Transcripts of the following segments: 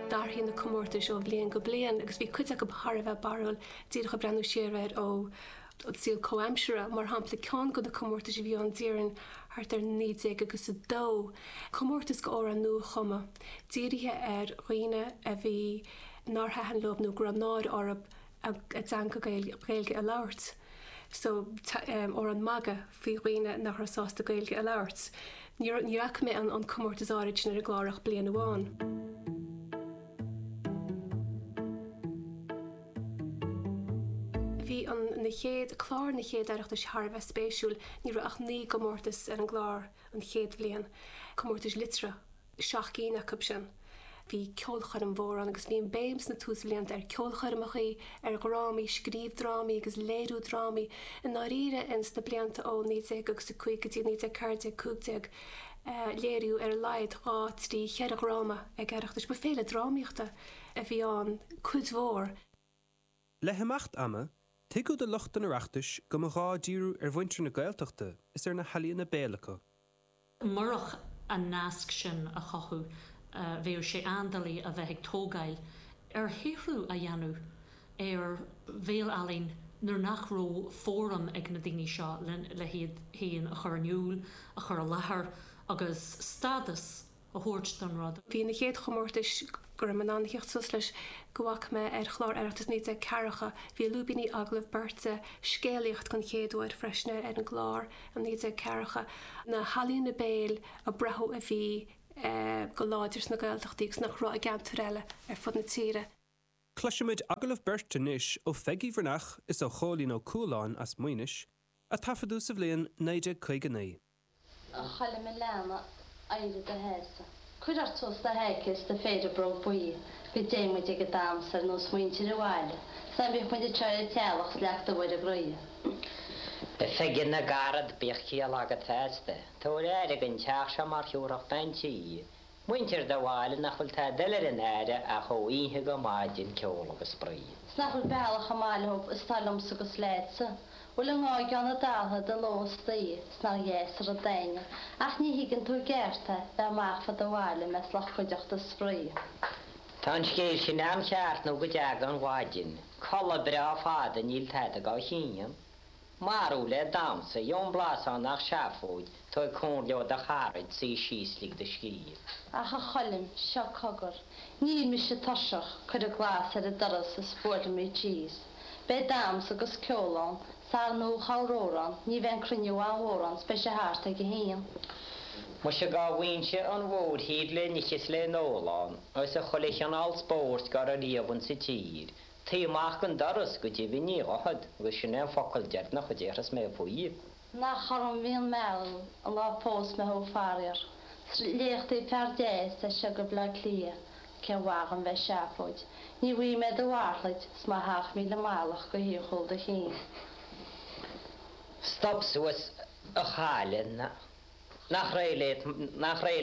D'athraigh na comórtais ó bhliain go bliain agus bhí cuid acu thar a bheith barrúil, díreach ag breathnú siar air ón saol comhaimseartha. Mar shampla, ceann de na comórtais a bhí ann déarfainn thart ar 1900 agus a dó, comórtas do amhrán nuachumtha, dírithe ar dhaoine a bhí nár thaitin leo nó go raibh náire orthu, a dteanga Gaeilge a labhairt. So, amhrán magaidh faoi dhaoine nach raibh sásta Gaeilge a labhairt, níor fhaca mé an comórtas áirid sin ar an gclár ach bliain amháin. Bhí an chéad, clár na chéad Oireachtais thar a bheith spéisiúil, ní raibh ach naoi gcomórtas ar an gclár an chéad bhliain, comórtais liteartha, seacht gcinn acu sin. Bhí ceolchoirm mhór ann agus bhí an béim sna túsbhlianta ar cheolchoirmeacha, ar dhrámaí, scríobh drámaí agus léiriú drámaí i ndáiríre in sna blianta ó 1905 go dtí 1914, 15 léiríodh ar a laghad, dhá, trí, cheithre dhráma ag Oireachtais. Ba féile drámaíochta a bhí ann cuid mhór. Le himeacht ama, tuigeadh do lucht an Oireachtais go mba ghá díriú ar mhuintir na Gaeltachta is ar na healaíona béil acu. Murach an nasc sin a chothú, bheadh sé an-doiligh a bheith ag tógáil ar shaothrú a dhéanamh ar bhéal-ealaín nuair nach raibh fóram ag na daoine seo le hiad féin a chur in iúl, a chur i láthair agus stádas a thabhairt don rud. Bhí na chéad chomórtais, go raibh mé in ann a theacht suas leis, go bhfaca mé ar chlár Oireachtas 1940, bhí lúibíní, agallamh beirte, scéalaíocht den chéad uair freisin ar an gclár i 1940. Na healaíona béil a braitheadh a bhí go láidir sna Gaeltachtaí agus nach raibh i gceantair eile ar fud na tíre. Cloisimid agallamh beirte anois ó Pheigí Bhreathnach is ó Chóilín Ó Cualáin as Maínis, a taifeadadh sa bhliain 1959. a Choilm a leana éirigh i do sheasamh. cuir ort suas do sheaicéad is do phéire bróg buí go dtéidh muid ag an damhsa ar nós muintir an bhaile 's ná bíodh muid ag troid teaghlach 's leac do Mhuire groidhe. A Pheigí na gcarad bíodh ciall agat feasta. Tabhair aire don teach seo mar thiúrfadh bean tí. Muintir do bhaile nach bhfuil tada eile ar a n-aire ach ó oíche go maidin, ceol agus spraoi. 'S nach bhfuil bealach chomh maith leob is tá liomsa 'gus leatsa, 'Bhfuil a ngá ag Eoghan a Dhaltha de ló is d'oíche, 'S nach deas an rud a dhuine ach ní thuigeann tú i gceart é, Bheith amach fá do bhaile, i measc lucht cuideachta is spraoi. Tá an scéal sin an-cheart nó go dteaga an mhaidin, codladh breá fada níl tada dhá shíneadh. Marú le damhsa, Jón Blasán Nach seafóid, tú ag cur leo do charaid, suí síos, lig do scíth. Ach a Choilm, seo cogar, níl mise tuirseach, cuireadh glas ar an doras is buailimid síos. Beidh dams agus ceol ann, is ar ndóigh amhráin ann, ní bheidh an cruinniú ann mhórán 's beidh sé thart ag a haon. Muise dhá bhfaighinnse an mhórthír le n-ithe 's le n-ól ann, is a chuile chineál spóirt dhá raibh riamh insa tír, Taobh amach den doras, go deimhin, ní ghabhfad, agus sin é an focal deireanach a déarfas mé faoi. Nach orm a bhí an mealladh an lá a phós mé thú, faraor. 'S a liachtaí fear deas as seo go Bleá Cliath, cén mhaith dhom bheith ag seafóid. Ní bhfaighidh mé do mhalraid 's mo sheacht míle mallacht go dtí cúl do chinn. Stop suas, a chailleach, nach réidh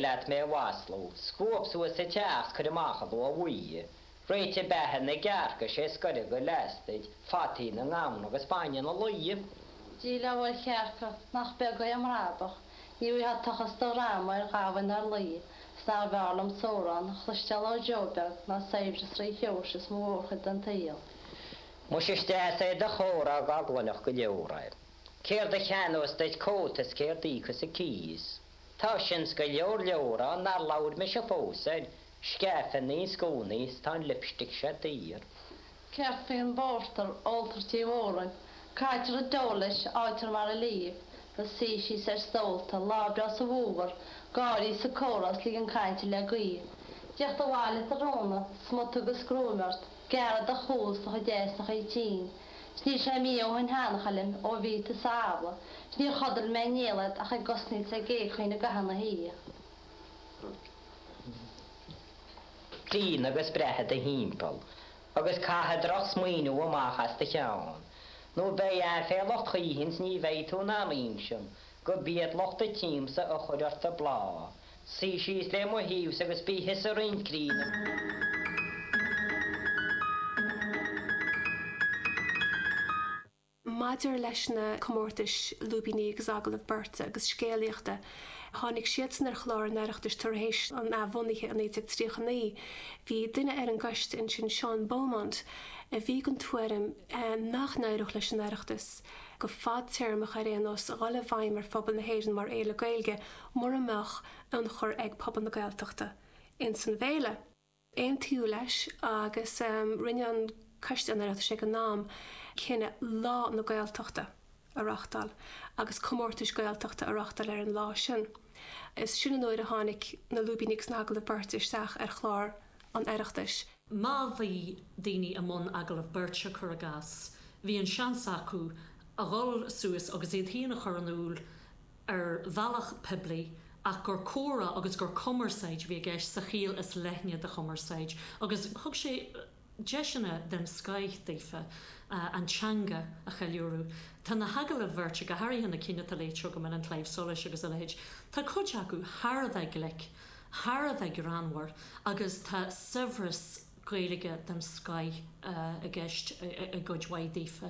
leat mé a mhaslú? Scuab suas an teach 's cuir amach an luaith bhuí. Réitigh beatha na gcearc is é scoireadh go leastaid fataí na ngamhna agus bainne na lao. Díleá ar chearca nach beag é a mbrabach, ní bhfaighfeá tochas do dhrama ar ghamhain ná ar lao is nárbh fhearr liomsa amhrán a chloisteáil ó Joe Beag ná saibhreas Rí Sheoirse is mo mhórchuid den tsaol. Muise is deas é do chomhrádh dhá gcluinfeadh go leor é. Céard a cheannós duit cóta is céard a íocfas an cíos. Tá sin is go leor leor ann nár labhair mise fós ar scairfeanna is gúnaí is tá an lipstick seo daor. Céard faoin bpórtar a óltar tigh Mhóra, caitear i dtreo leis, fháightear mar a líomh, ó suí síos ar stólta, lá breá sa bhfómhar, gáirí is comhrá is ligean cainte le gaoith, teacht abhaile tráthnóna, smut agus gruaim ort, Gearradh chuasach a deir sa chaoi tinn, 'S níl sé mí ó shin ann a Choilm ó bhí tú sa Abhla, 'S níor chodail mé néal ach ag osnaíl is ag éagaoin i gcaitheamh na hoíche. Déan agus breathnaigh i do thimpeall agus caith drochsmaoineamh amach as do cheann, Nó beidh aiféala ort choíchin 's ní bheidh tú in am aon sin go b'iad lucht an tsiamsa a chuir ort an bláth, suigh síos le mo thaobhsa agus bí thusa roinnt críonna. Maidir leis na comórtais lúibíní agus agallaimh beirte agus scéalaíochta, tháinig siadsan ar chlár an Oireachtais tar éis an athbhunaithe i 1939. Bhí duine ar an gcoiste ansin, Seán Beaumont, a bhí den tuairim nach n-éireodh leis an Oireachtas. go fadtéarmach ar aon nós, a dhul i bhfeidhm ar phobal na hÉireann mar fhéile Gaeilge mura mbeadh ionchur ag pobal na Gaeltachta ins an bhféile. Aontaíodh leis agus rinne an Coiste an Oireachtais ag an am cinneadh Lá na Gaeltachta a reachtáil agus comórtais Gaeltachta a reachtáil ar an lá sin. Is sin an uair a tháinig na lúibíní agus na hagallaimh beirte isteach ar chlár an Oireachtais. Má bhí daoine i mbun agallamh beirte, cuir i gcás, bhí an seans acu a dhul suas agus iad féin a chur in iúl ar bhealach poiblí ach gur comhrá agus gur cumarsáid a bhí i gceist sa chiall is leithne de chumarsáid agus thug sé deiseanna den scoith daofa an teanga a cheiliúradh. Tá na hagallaimh bheirte, go háirithe na cinn atá léite agam in An Claidheamh Soluis agus a leithéid, tá cuid acu thar a bheith glic. thar a bheith greannmhar agus tá saibhreas Gaeilge den scoith i gceist i gcuid mhaith daofa.